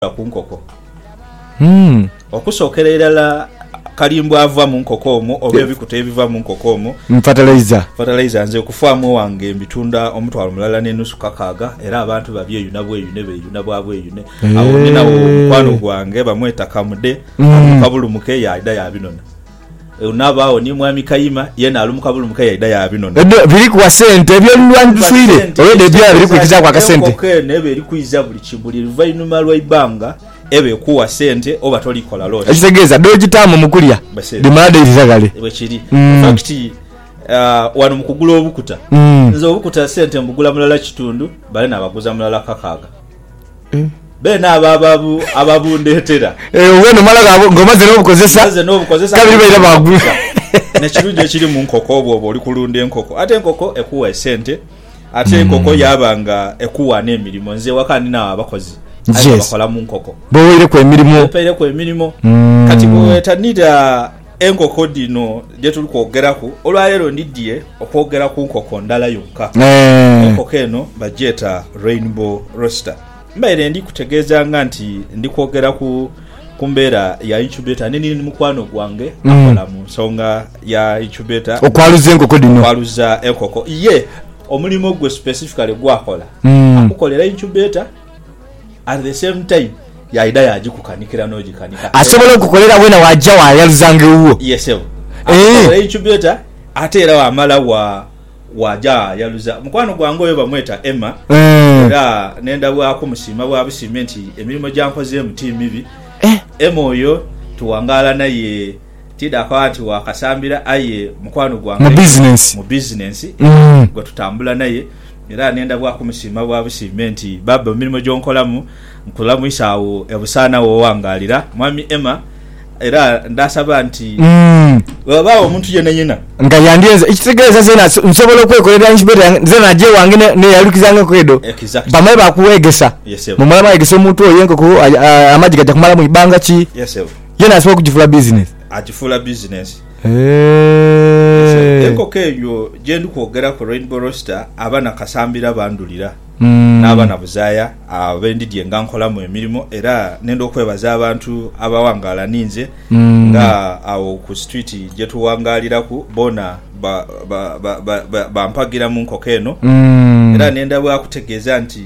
Okuva ku nkoko. Okusookera irala kalimbwe ava mu nkoko omwo oba ebikuta ebiva mu nkoko omwo. Fatalaiza. Fatalaiza nze okufaamu ewange mbitunda omutwalo mulala n'enusu kakaaga era abantu babyeyuna bweyune beeyuna bwa bweyune. Agho ninagho omukwano gwange bamweta Kamude ava Kabulumuke yaidha yaabinona. Eunabaagho ni Mwami Kayima yeena ali mu kabulumuka yaidha yaabinona. Edho biri kuwa sente ebyo oluwanyi tuswire olwedho ebyooya biri kwikizaaku akasente. Enkoko eno eba eri kwiiza buli luvainhuma lwa ibanga eba ekuwa sente oba toli kola loosi. Ekitegeeza dh'ogitaamu mu kulya dhimala dhaidhira ghale. Bwekiri. Fakiti wano mu kugula obukuta, nze obukuta sente mbugula mulala kitundhu bale nabaguza mulala kakaaga. Beene abo ababundheetera. Obwo nomala ng'omaze n'obukozesa. Omaze n'obukozesa. Kabiri baira baaguza. N'ekirungi ekiri mu nkoko bwoba oli kulunda enkoko, ate enkoko ekuwa esente ate enkoko yaaba nga ekuwa n'emirimo. Nze ewaka ndinagho abakozi aye nga bakola mu nkoko. B'oweireku emirimo. B'oweireku emirimo. Kati bwe weetanira. Enkoko dhino dhe tuli kwogeraku olwaleero ndidhie okwogera ku nkoko ndala yonka. Enkoko eno bagyeta Rainbow Roaster. Mbaire ndi kutegeezanga nti ndi kwogera ku ku mbeera ya incubator ni ni mukwano gwange akola mu nsonga ya incubator, Okwaluza enkoko dhino. okwaluza enkoko. Ye omulimo gwe specifically gwakola akukolera incubator. at the same time yaidha yagikukanikira nogikanika asobola okukolera wena waja wayaluzanga ewuwo ye sebo eeh akukolera incubator ate era wamala wa waja wayaluza mukwano gwange oyo bamweta Emma eeh era nenda bwakumusiima bwabusime nti emirimo gyankozeemu ti mibi eeh Emma oyo tuwangala naye. Tidhako anti wa kasambira aye mukwano gwange mu bizinensi gwe tutambula naye era ne ndhabwaku musiima bwa busiime nti baaba emirimo gy'onkolamu nkolamu isaagho ebusaana wo wangaalira Mwami Emma era ndhasaba nti bwewabaagho omuntu yenayena nga yandyenze ekitegeeza zeena nsobola okwekolera incubator yange zeena naja ewange neyalukiza ng'enkoko edho bamale baakuweegesa mu mala mweegesa omuntu oyo enkoko amagi gaja kumala mu ibanga ki. Ye n'asobola okugifuula bizinesi. Agifuula bizinesi. Eehh. Enkoko eyo gye ndi kwogeraku, Rainbow Roaster, aba na Kasambira abandhulira n'aba na Buzaaya abe ndidhye nga nkolamu emirimo era nenda okwebaza abantu abawangaala ni nze nga agho ku situwiti gye tuwangaaliraku boona bampagira mu nkoko eno era nenda bwa kutegeeza nti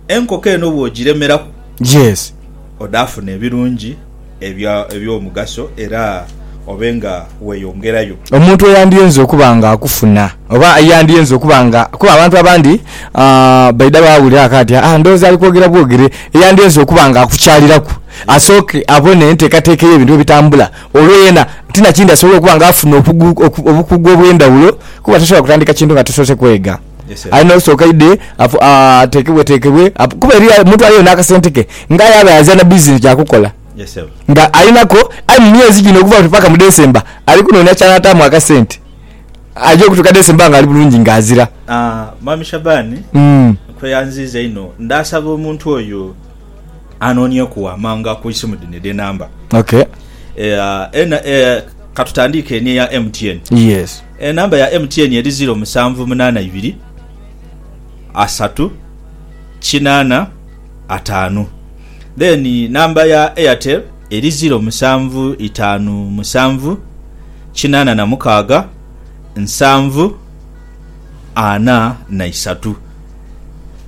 enkoko eno bw'ogiremeraku. Yes. Odaafuna ebirungi ebya, eby'omugaso era obe nga weeyongerayo. Omuntu eyandyenze okuba nga akufuna, oba eyandyenze okuba nga, kuba abantu abandi, aah, baidha baawulira aka ati, Aa, ndowooza ali kwogera bwogere. Eyandyenze okuba nga akukyaliraku, asooke abone enteekateeka ey'ebintu bwe bitambula, olwo yena ti na kindi asobole okuba nga afuna okugu, oku, obukugu obw'endhawulo, kuba tosobola kutandika kintu nga tosoose kwega. Alina okusooka aidhe atekebwetekebwe kuba eriyo omuntu aliyo n'akasente ke nga aye abe azira na bizinensi ya kukola nga alinako. Aye mu myezi gino okuva oti paka mu Desemba ali kunoonia ky'anaataamu akasente aja okutuuka Desemba ng'ali bulungi ng'azira. Mwami Shaban, nkweyanziiza inho. Ndaasaba omuntu oyo. anonieku waamanga ku isimu dhino edhenamba. Okay. Eh, ena, eh, katutandiike eni eya MTN. Yes. Enamba ya MTN eri ziro musanvu munaana ibiri asatu kinaana ataanu. Then namba ya Airtel eri ziro musanvu itaanu musanvu kinaana na mukaaga nsanvu. ana na isatu.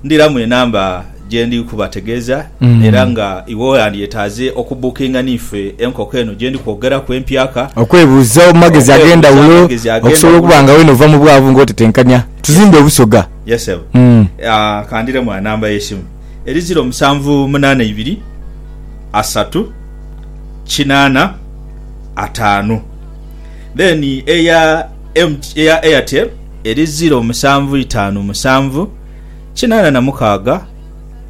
Ndiramu enamba gye ndi kubategeeza era nga iwe wandyetaaze okubbukinga n'ife enkoko eno gye ndi kwogeraku empyaka. Okwebuuza mu magezi ag'endhawulo okusobola okuba nga weene ova mu bwavu nga otetenkanya tuzimbe Obusoga. Yes ssebo. Ka ndiremu anamba y'esimu eri ziro musanvu munaana ibiri asatu kinaana ataanu then eya. MT eya Airtel eri ziro musanvu itaanu musanvu kinaana na mukaaga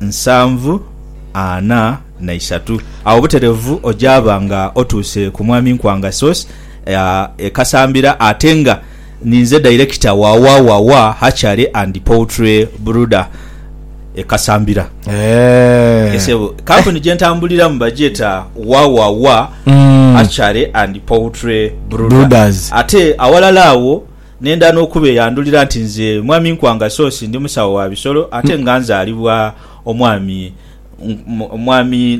nsanvu ana na isatu. Agho butereevu ojaaba nga otuuse ku Mwami Nkwanga Sauce e Kasambira ate nga ninze dayirekita wa Wawawa Hatchery and Poultry Brooder. e Kasambira. Eeh. Sebo, kampuni gye ntambuliramu bagyeta Wawawa mm. Archery and Poultry Brooders. Ate awalala awo nenda n'okubeyandulira nti nze Mwami Nkwanga Sosi ndi musawo wa bisolo ate mm. nga nzaalibwa omwami omwami